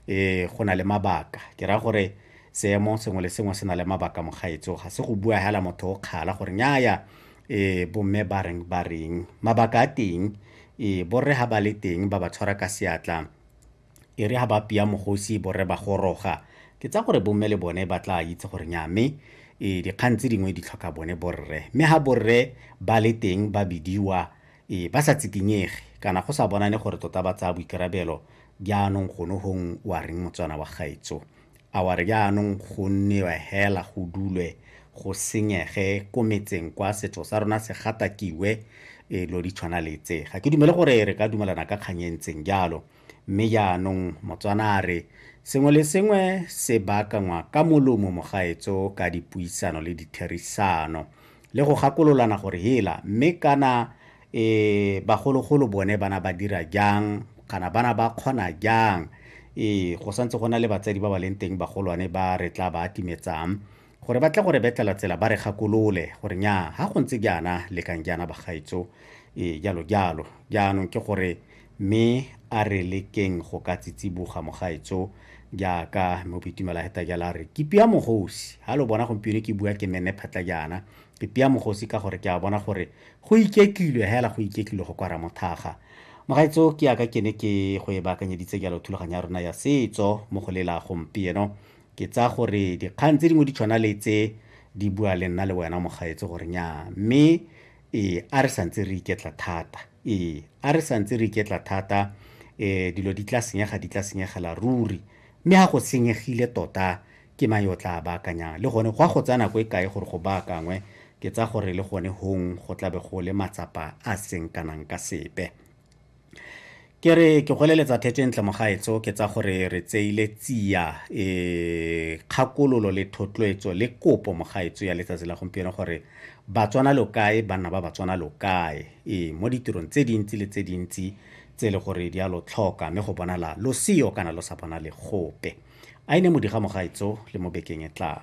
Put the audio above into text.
e go na le mabaka ke ra gore seemo sengwe le sengwe se na le mabaka mogaetso ga se go bua hela motho o kgala gore nyaya e bomme ba reng ba reng mabaka a teng e borre ha ba le teng ba ba tshwara ka seatla e re ha ba pia mogosi borre ba goroga ke tsa gore bomme le bone ba tla itse gore nya mme e dikgang tse dingwe di tlhoka bone borre mme ha borre ba le teng ba bidiwa Ee, ba sa tsikinyege kana go sa bonane gore tota ba tsaya boikarabelo. Jaanong gone gong wa reng motswana wa gaetso? A wa re jaanong go nnewe hela go dulwe go senyege ko metseng kwa setso sa rona se gatakiwe? Ee, lo di tshwana le tse. Ga ke dumele gore re ka dumelana ka kgang e ntseng jalo. Mme jaanong Motswana a re, sengwe le sengwe se baakangwa ka molomo mogaetso ka dipuisano le ditherisano le go gakololana gore hela mme kana e bagologolo bone bana ba dira jang kana bana ba kgona jang ee go santse go na le batsadi ba ba leng teng bagolwane ba re tla ba atimetsang gore ba tle gore betlela tsela ba re gakolole gore nya ga go ntse jaana lekang jaana bagaetso e jalo jalo jaanong ke gore mme a re lekeng go ka tsitsiboga mogaetso jaaka mo boitumela heta jala re ke pia mogosi ha lo bona gompieno ke bua ke mene phatla jaana ke pia mogosi ka gore ke a bona gore go iketlilwe hela go iketlilwe go kwara mothaga mogaetso ke yaka ke ne ke go e baakanyeditse jalo thulaganyo ya rona ya setso mo go lela gompieno ke tsaya gore dikgang tse dingwe di tshwana le tse di bua le nna le wena mogaetse gore nya mme ee a re santse re iketla thata ee a re santse re iketla thata um dilo di tla senyega di tla senyegela ruri mme ga go senyegile tota ke mang yo tla baakanyang le gone go a go tsaya nako e kae gore go baakangwe ke tsa gore le gone hong go tlabe go le matsapa a seng kanang ka sepe ke re ke goleletsa thetsentle mogaetso ke tsa gore re tseile tsia e kgakololo le thotloetso le kopo mogaetso ya letsatsi la gompieno gore batswana lo kae banna ba batswana lo kae e mo ditirong tse dintsi le tse dintsi tse e le gore di a lo tlhoka mme go bonala lo seyo kana lo sa bonale gope a ine modiga mogaetso le mo bekeng e tlang